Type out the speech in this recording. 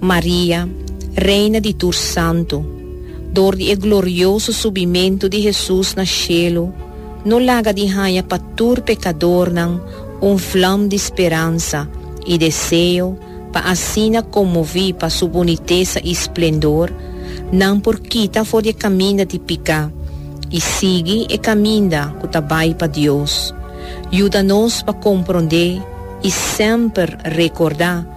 Maria, Reina di tur santu, dor di e glorioso subimentu di Hesus na shelu, no laga di haña pa tur pekadornan un vlam di speransa i deseo pa asina konmoví pa Su bunitesa i splendor, nan por kita for di e kaminda di piká i sigui e kaminda ku ta bai pa Dios. Yuda nos pa komprondé i semper rekordá.